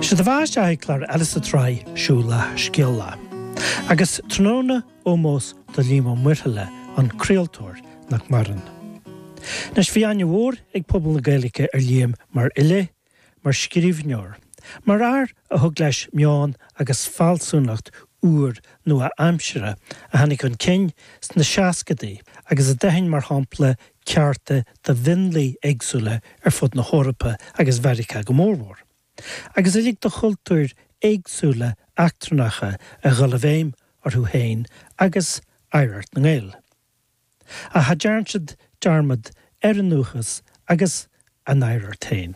Sé do bheatha isteach chuig clár eile sa tsraith Siúlach Scéalach. Agus tráthnóna ómós do Liam Ó Muirthile, an craoltóir, nach maireann. Anois bhí aithne mhór ag pobal na Gaeilge ar Liam mar fhile, mar scríbhneoir, mar fhear a thug leis meon agus fealsúnacht úr nua-aimseartha a tháinig chun cinn sna seascadaí agus a d'aithin mar shampla cearta do mhionlaigh éagsúla ar fud na hEorpa agus Mheiriceá go mórmhór, agus a lig do chultúir éagsúla eachtrannacha a dhul i bhfeidhm orthu féin agus oidhreacht na nGael. Ach cha dearn siad dearmad ar a ndúchas agus a n-oidhreacht féin.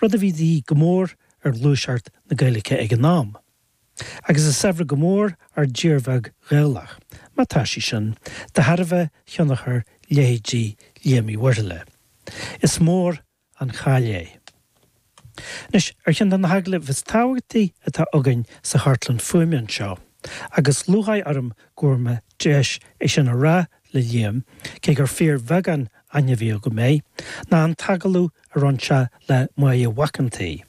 rud a bhí de dhíth go mór ar ghluaiseacht na Gaeilge ag an am. Agus is saibhre go mór ár dtír bheag Ghaelach, má tá sí sin, de thairbhe thionchar leithéidí Liam Uí Mhuirthile. Is mór an chaill é. Anois, ar cheann de na hagallaimh is tábhachtaí atá againn sa chartlann fuaime anseo, agus lúcháir orm go bhfuair mé deis é sin a rá le Liam, cé gur fíorbheagán aithne a bhí agam air, ná an t-agallamh a rinne sé le Máire Mhac an tSaoi,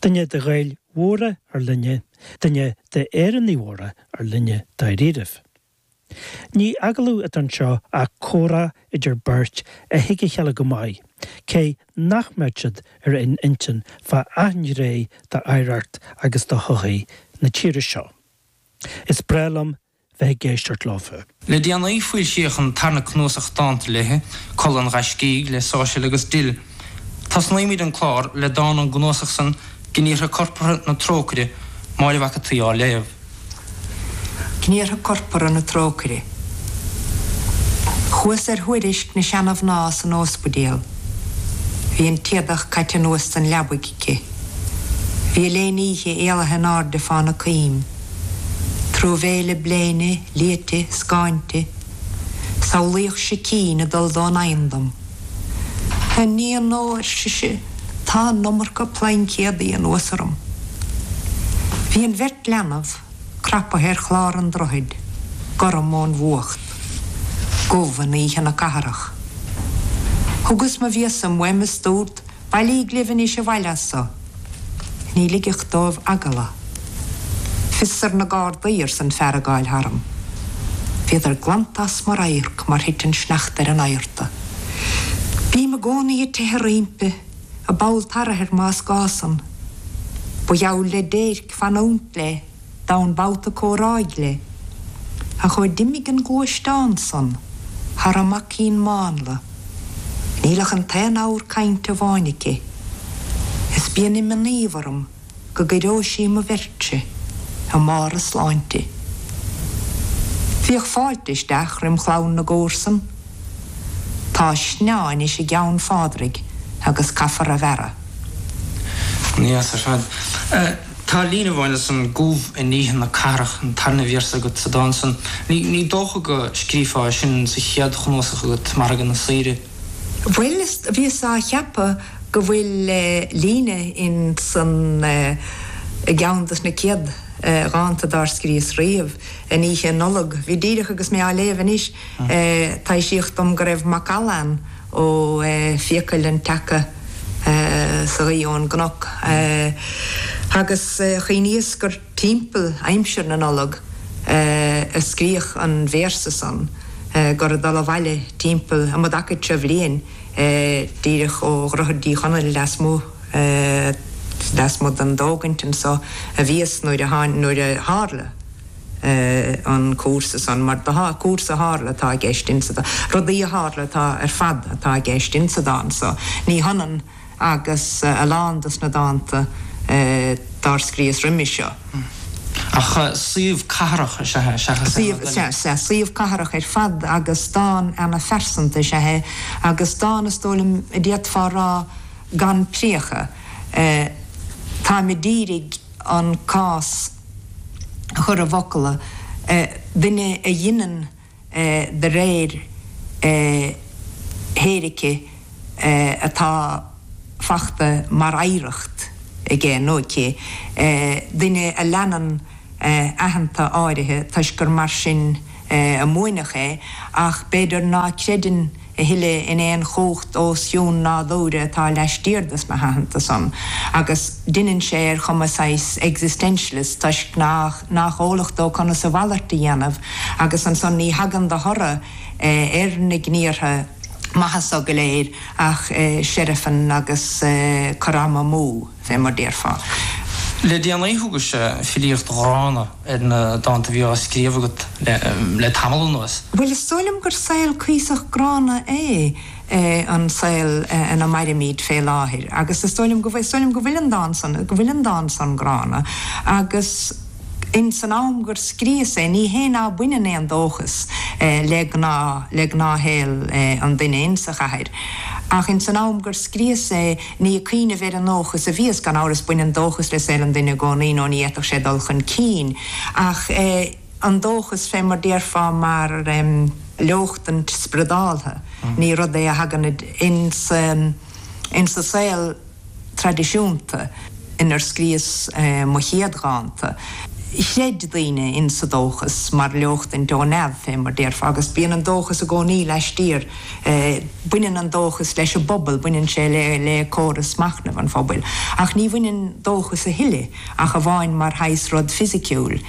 duine de Ghaeil mhóra ár linne, duine d'Éireannaigh mhóra ár linne dáiríribh. Ní agallamh atá anseo ach comhrá idir beirt a thuig a chéile go maith, cé nach mbeadh siad ar aon intinn fá achan ghné d'oidhreacht agus do shochaí na tíre seo. Is breá liom bheith ag éisteacht leofa. Le déanaí foilsíodh an tarna cnuasach dánta léi, Codladh an Ghaiscígh, le Sáirséal agus Dill. Tosnaímid an clár le dán ón gcnuasach san, Gníomhartha Corpartha na Trócaire, Máire Mhac a' tSaoi á léamh. Gníomhartha Corpartha na Trócaire. Chuas ar thuairisc na seana-mhná san óspaidéal. Bhí an t-éadach caite anuas den leabaidh aici. Bhí an léine oíche éalaithe in airde fána coim. Truamhéile bléine, liaite, scáinte, samhlaíodh sicín ag dul don oigheann dom. A níon ó, ar sise, tá an iomarca plaincéadaí anuas orm. Bhí an bheirt leanbh crapaithe ar chlár an droichid, gorm ón bhfuacht. Domhan oíche na catharach. Thugas mo phíosa uaim is dúrt Bailíg libh anois abhaile as so. Ní ligfeadh dóibh eagla. Fios ar na Gardaí, arsa an fear ag gabháil tharm. Bhíodar glanta as mo radharc mar thit an sneachta ar an adharta. Bím i gcónaí ag teitheadh roimpi, a' ball tarthair, más gá san. Ba gheall le déirc fanúint léi. domhan babhta comhráidh léi, ach ó d'imigh an gluaisteán san thar an maicín mánla, níl ach an t-aon abhar cainte amháin aici, is bíonn imníomh orm go gciorróidh sí mo bheirtse i mbarr a sláinte. Bhíodh fáilte isteach roim chlann na gcomharsan. Tá sneá anois i gceann Phádraig agus caithfear a bhearradh. Níl a fhios ar fad. Tá líne amháin as an gCóbh in Oíche na Cathrach, an tarna véarsa agat sa dán san. Ní dócha go scríofá é sin sa chéad chnuasach agat, Margadh na Saoire. Bhuel, bhíos á cheapadh go bhfuil líne in san i gceann dos na céad dhánta dár scríos riamh, in Oíche Nollag. Bhí díreach agus mé á léamh anois. Taibhsíodh dom go raibh macalla ann ó fiacail an tseaca sa ghaoith ón gcnoc agus chuimhníos gur timpeall aimsir na Nollag a scríodh an véarsa san, gur ag dul abhaile timpeall um an dtaca seo bhliain díreach ó Dhroichead Uí Chonaill lasmuigh den dtógaint anso a bhíos nuair a tharla. an cúrsa san, mar déarfá, cúrsa a tharla, atá i gceist ins an, rudaí a tharla atá ar fad atá i gceist ins an dán so. Ní hionann agus a lán dos na dánta dár scríos roimis seo. Ach suíomh cathrach is ea é, seachas é mar dhuine. Sea, sea, suíomh cathrach ar fad agus dán ana phearsanta is ea é agus dán is dóigh liom a d'fhéadfá a rá gan priacha. Táim a d'iarraidh an cás. chur i bhfocla, duine a dheineann de réir theoirice atá fachta mar oidhreacht aige nó aici, duine a leanann aitheanta áirithe toisc gur mar sin a múineadh é, ach b'fhéidir ná creideann a thuilleadh in aon chumhacht os cionn nádúir atá laistiar dos na haitheanta san, agus deineann sé ar chuma saghas existentialist toisc nach nach eolach dó conas a mhalairt a dhéanamh, agus ansan ní thagann de thoradh ar na gníortha maithe so go léir ach seirfean agus cur ama amú. Bheith mar déarfá. Le déanaí thugais-se filíocht ghránna ar na dánta bhí á scríobh agat le tamall anuas. Bhuel is dóigh liom gur saol cuíosach gránna é an saol ina mairimid fé láthair agus is dóigh liom go bhfuil, is dóigh liom go bhfuil an dán san, go bhfuil an dán san gránna agus in san am gur scríos é ní hé ná baineann aon dóchas le gnáth, le gnáthshaol an duine in sa chathair ach in san am gur scríos é, Ní ag cuimhneamh ar an ndóchas a bhíos, gan amhras, baineann dóchas le saol an duine i gcónaí nó ní fhéadfadh sé dul chun cinn, ach an dóchas, fé mar déarfá, mar leochtaint spriodáltha, ní rud é a thagann ins an saol traidisiúnta. inar scríos mo chéad dhánta. Chreid daoine insa dóchas mar leochtain ó neamh, fé mar déarfá, agus bíonn an dóchas i gcónaí laistiar, baineann an dóchas leis an bpobal, baineann sé le córas machnaimh an phobail. Ach ní bhaineann dóchas a thuilleadh ach amháin mar shaghas rud fisiciúil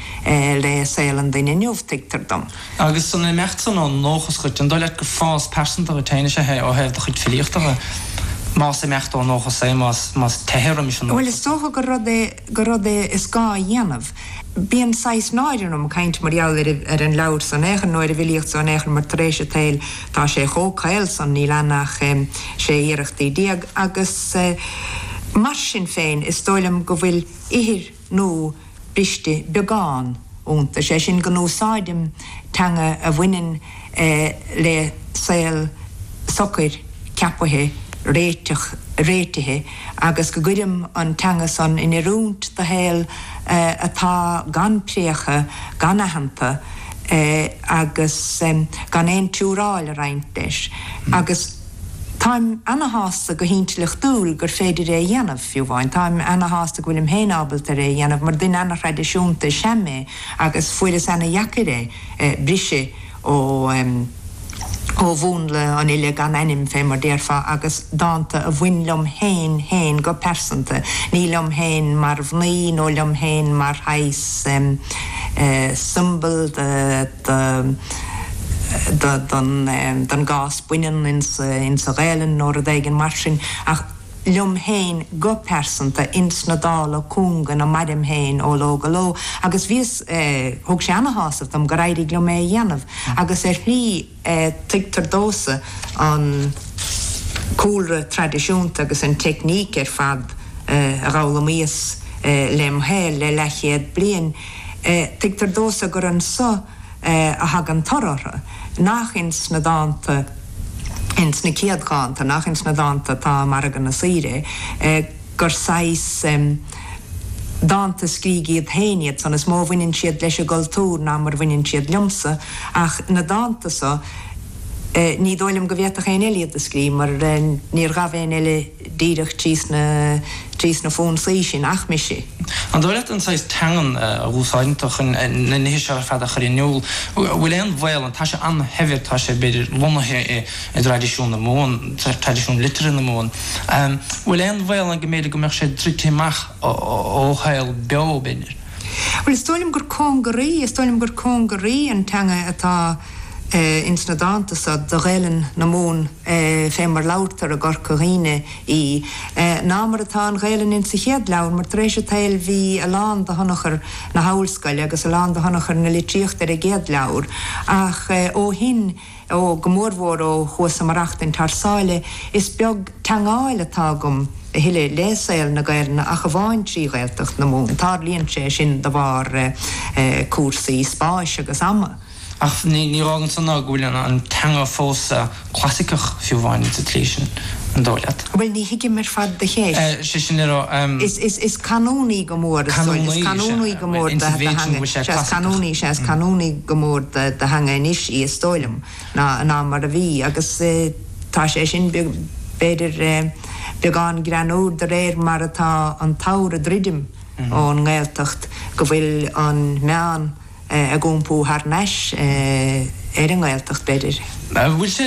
le saol an duine inniu, tuigtear dom. Agus san imeacht san ón ndóchas dhuit, an dóigh leat gur fás pearsanta dhuit féin is ea é ó thaobh do chuid filíochta dhe? Más imeacht ón ndóchas é, más teitheadh roimis é. Bhuel, is dócha gur rud é, gur rud é is gá a dhéanamh. Bíonn saghas náire orm caint mar gheall ar, ar an leabhar san in aon chor nó ar an bhfilíocht san in aon chor mar tar éis an tsaoil tá sé chomh caol san, níl ann ach, em, sé iarrachtaí déag agus, eh, mar sin féin is dóigh liom go bhfuil ithir nua briste beagán iontu, sé sin go n-úsáidim teanga a bhaineann le saol socair, ceapaithe, réiteach, réitithe agus go gcuirim an teanga san in oiriúint do shaol atá gan préacha, gan aitheanta agus gan aon tsiúráil ag roinnt leis agus. Táim ana-shásta go hintleachtúil gur féidir é a dhéanamh, fiú amháin. Táim ana-shásta go bhfuilim féin ábalta ar é a dhéanamh mar duine ana-thraidisiúnta is ea mé agus fuaireas ana-dheacair é briseadh ó ó mhúnla an fhile gan ainm fé mar déarfá agus dánta a bhain liom féin féin go pearsanta, ní liom féin mar mhnaoi nó liom féin mar shaghas symbol de. don gcás baineann ins an Ghaelainn nó rud éigin mar sin ach liom féin go pearsanta ins na dála cúnga ina mairim féin ó ló go ló agus bhíos thug sé an-shásamh dom gur éirigh liom é a dhéanamh agus ar shlí tuigtear domhsa an cúlra traidisiúnta agus an teicníc ar fad a dh'fhoghlaimíos lem shaol le leathchéad bliain. Tuigtear domhsa gur anso a thagann toradh orthu, nach ins na dánta, ins na céad dhánta, nach ins na dánta atá i Margadh na Saoire, gur saghas dánta scrígh iad féin iad san. Is mó a bhaineann siad leis an gcultúr ná mar a bhaineann siad liomsa, ach na dánta so, ní dóigh liom go bhféadfadh éinne eile iad a scrígh, mar níor ghabh éinne eile. díreach thíos sna fonsaí sin ach mise. An dóigh leat an saghas teangan a úsáideann tú chun na nithe seo ar fad a chur in iúl, an bhfuil aon bhaol ann? Tá sé an-shaibhir, tá sé b'fhéidir lonnaithe i dtraidisiún na Mumhan, traidisiún liteartha na Mumhan. An bhfuil aon bhaol ann go mb'fhéidir go mbeadh sé druidte amach ó shaol beo b'fhéidir? Bhuel is dóigh liom gur cóngaraí, is dóigh liom gur cóngaraí an teanga atá. Ins na dánta so, do Ghaelainn na Mumhan fé mar labhartar i gCorca Dhuibhne í, ná mar atá an Ghaelainn insa chéad leabhar, mar tar éis a tsaoil bhí a lán de thionchar na hOllscoile agus a lán de thionchar na litríochta ar an gcéad leabhar, ach ó shin, ó, go mórmhór ó chuas-sa ag maireachtaint thar sáile, is beag teangmháil atá agam a thuilleadh le saol na Gaelainne ach amháin trí Ghaeltacht na Mumhan. Tarlaíonn sé sin de bharr cúrsaí spáis agus ama. Ach ní fhágann san ná go bhfuil an teanga fós clasaiceach fiú amháin sa tslí sin, an dóigh leat? Bhuel, ní thuigim ar fad do cheist. 'Sé sin le rá. Is canúnaí go mór, is dóigh. Is canúnaí go mór do theanga. Bhuel, insa mhéid sin go bhfuil sé clasaiceach. Sea, is canúnaí is ea, is canúnaí go mór de theanga anois í, is dóigh liom, ná mar a bhí. Agus tá sé sin, b'fhéidir, beagán greannúr de réir mar atá an t-abhar ag druidim ón nGaeltacht, go bhfuil an meán, ag iompú thar n-ais ar an nGaeltacht, b'fhéidir. An bhfuil sé